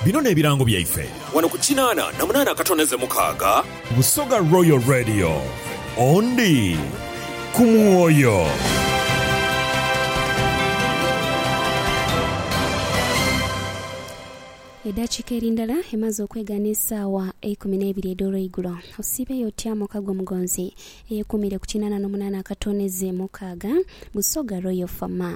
Bino n'ebirango byaife. Wano ku kinaana na munaana akatondeze mukaaga. Busoga Royal Radio, Ondi ku mwoyo. Edhakiika eri ndala emaze okwegha n'esaawa eikumi n'eibiri edh'olweigulo. Osiibeeyo otya muka gwo mugonzi eyekuumiire ku kinaana n'omunaana akatondeze mukaaga? Busoga Royal FM.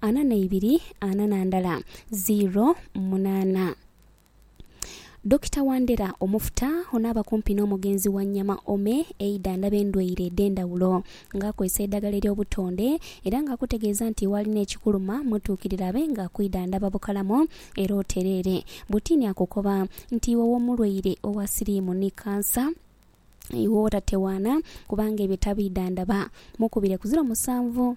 ana na ibiri ana na ndala ziiro munaana. Dokita Wandera Omufuta ono aba kumpi n'omugenzi Wanyama Ome eidhandhaba endwaire edh'endhawulo nga akozesa eidhagala ery'obutonde era nga akutegeeza nti waalina ekikuluma mutuukirire abe nga akwidhandhaba bukalamu era otereere. Butiini akukoba nti iwe w'omulwaire owa siriimu ni kansa, iwe otatewaana kubanga ebyo tabidhandhaba, mukubire ku ziro musanvu.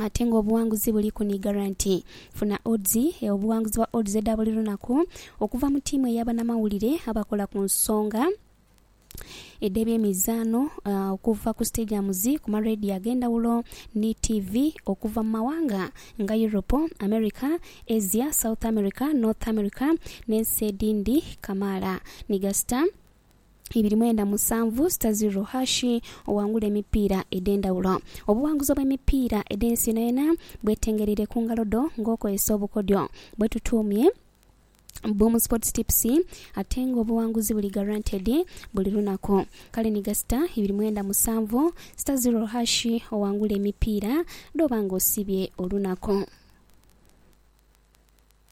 Ate nga obuwanguzi buli ku ni garanti. Funa odds obuwanguzi bwa odds edha buli lunaku okuva mu tiimu eya banamawulire abakola ku nsonga edh'ebyemizaano okuva ku stadiums, ku ma radio ag'endhawulo ni tiivi okuva mu mawanga nga Europe, America, Asia, South America, North America n'ensi edhindi kamaala ni gasita. ibiri mwenda musanvu sita ziro hashi oghangule emipiira edh'endhawulo. Obuwanguzi obw'emipiira edh'ensi yonayona bwetengereire ku ngalo dho ng'okozesa obukodyo bwetutuumye Boom Sports Tips ate ng'obuwanguzi buli guaranteed buli lunaku. Kale ni gasita ibiri mwenda musanvu sita ziro hashi oghangule emipiira dh'oba ng'osibye olunaku.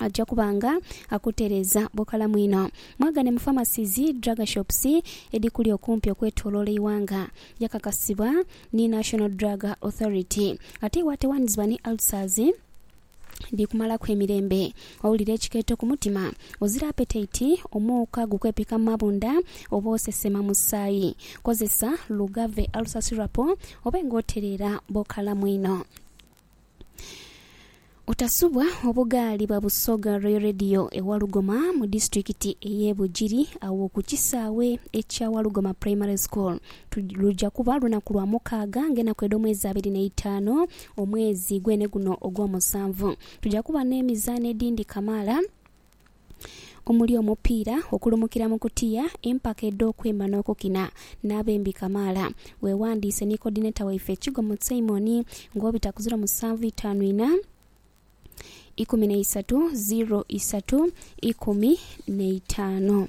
aja kuba nga akutereeza bukalamu inho. Mwagane mu Pharmacies, Drug Shops edhikuli okumpi okwetoloola eighanga. Yakakasibwa ni National Drug Authority. Ate iwe atewanizibwa ni ulcers dhikumalaku emirembe, owulira ekikeeto ku mutima, ozira apetaiti, omuuka gukwepika mu mabunda oba osesema musaayi, kozesa Lugave Ulcer Syrup obe nga otereera bukalamu inho. Otasubwa obugaali ba Busoga Royal Radio e Walugoma mu disitulikiti ey'e Bugiri agho ku kisaawe ekya Walugoma Primary School. Tu- Luja kuba lunaku lwa mukaaga ng'enaku edh'omwezi abiri n'eitaanu omwezi gwene guno ogw'omusanvu. Tuja kuba n'emizaano edhindhi kamaala. omuli omupiira, okulumukira mu kutiya, empaka edh'okwemba n'okukina, n'abembi kamaala. Weewandiise ni Coordinator waife Kigomo Simon nga obita ku ziro musanvu itaanu inha, ikumi na isatu, ziro isatu, ikumi na itaanu.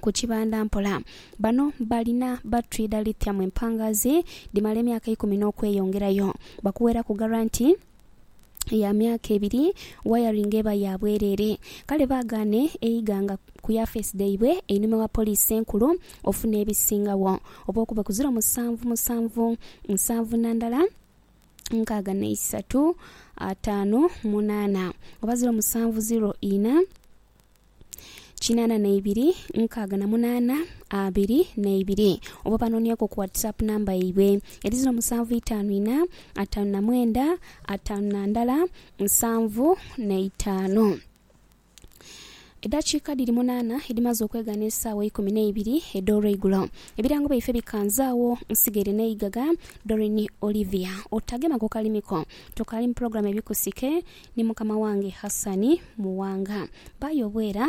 ku kibanda mpola. Bano balina batri dha lithium empangaazi dhimala emyaka ikumi n'okweyongerayo. Bakuweeraku garanti ya myaka ebiri, wayaringi eba ya bwereere. Kale baagaane eiga nga ku yafeesi dhaibwe einhuma wa Poliisi Enkulu ofuna ebisingagho, oba okube ku ziro musanvu musanvu nsanvu na ndala nkaaga na isatu ataanu munaana, oba ziro musanvu ziro ina. kinana na ibiri nkaaga na munana abiri na ibiri oba banonyeku ku WhatsApp number yaibwe eri ziro musanvu itaanu ina ataanu na mwenda ataanu na ndala nsanvu na itaanu. Edhakiika dhiri munaana edhimaze okwegha n'esaawa eikumi na ibiri edh'olweigulo, ebirango byaife bikanze agho nsigaire n'eighagha, Doreen Olivia. Otagema ku kalimi ko, tokali mu pulogulaamu ebikusike Ni mukama wange Hassan Muwanga. Bayobwera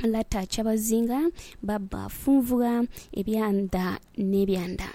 Lata Kyabazinga, Baba Funvugha, Ebyanda n'ebyanda.